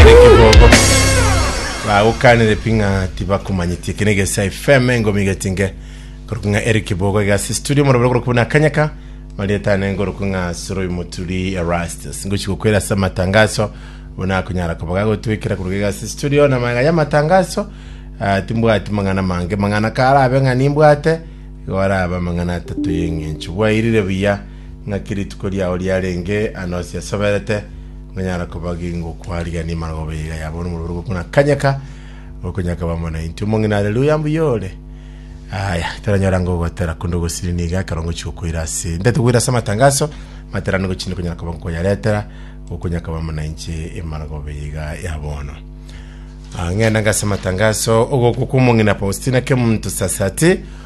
Ere kibogo bagokanire pi ng'a tibakomanyetie kene gesa FM engomi getinge korokwa ng'a eri kibogo igasi studio morobere korokwa buna akanyaka marietane ngorokwa ng'a soroi moturi erastus ngochi gokwera ase amatangaso buna akonyara koba gagotwekera korokwa igasi studio na maega ya amatangaso ah, timbwati mang'ana mange mang'ana karabe ng'a nimbwate igo araba amang'ana atato y'eng'encho bwairire buya Naki rituko riao riarenge anosi ase asoberete, nkonyara kobagingwa okwarigania emarogobio ye iga yabo nomobere obo buna kanyaka, gokonyakaba amo naintwe. Omong'ina, Haleluya! Mbuya ore. Aya, toranyora ng'a ogotera konde ogosiri nigo ekero ngochia gokoira ase ntaete koira ase amatangaso, matera nigo chinde konyara koba nkoyaretera, gokonyakaba amo nainche emarogobio ye iga ya bono. Ah, ng'enda ngase amatangaso, ogokwa kw'omong'ina Faustina Kemunto Sasati,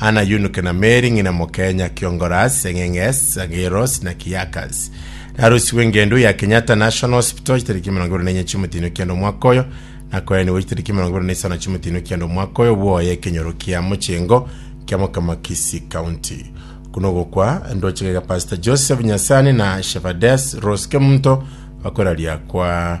Ana y'onuke na Meri ng'ina mokenya Kiongoras, Eng'eng'es, Zagiros na Kiakas. Narosirwe engendo ya Kenyatta National Hospital chitariki emerongo ebere na enye chi'omotino kianda omwaka oyo, nakoerenigwe chitariki emerongo ebere na isano chi'omotino kianda omwaka oyo bwoye ekenyoro kia mochengo kia mokama Kisii County. Okuna ogokwa ndoche gega Pastor Joseph Nyasani na Shepherdess Rose Kemunto bakoiraria kwa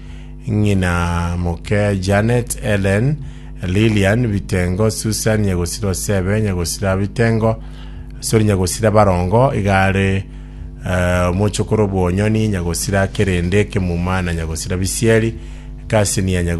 ng'ina moke Janet, Ellen, Lilian, Bitengo, Susan, nyagosira o Sebe, nyagosira Bitengo, sorry, nyagosira Barongo, igare eh, omochokoro Bwonyoni, nyagosira Kerende, Kemuma na nyagosira Bisieri, Kasinia, nyagosira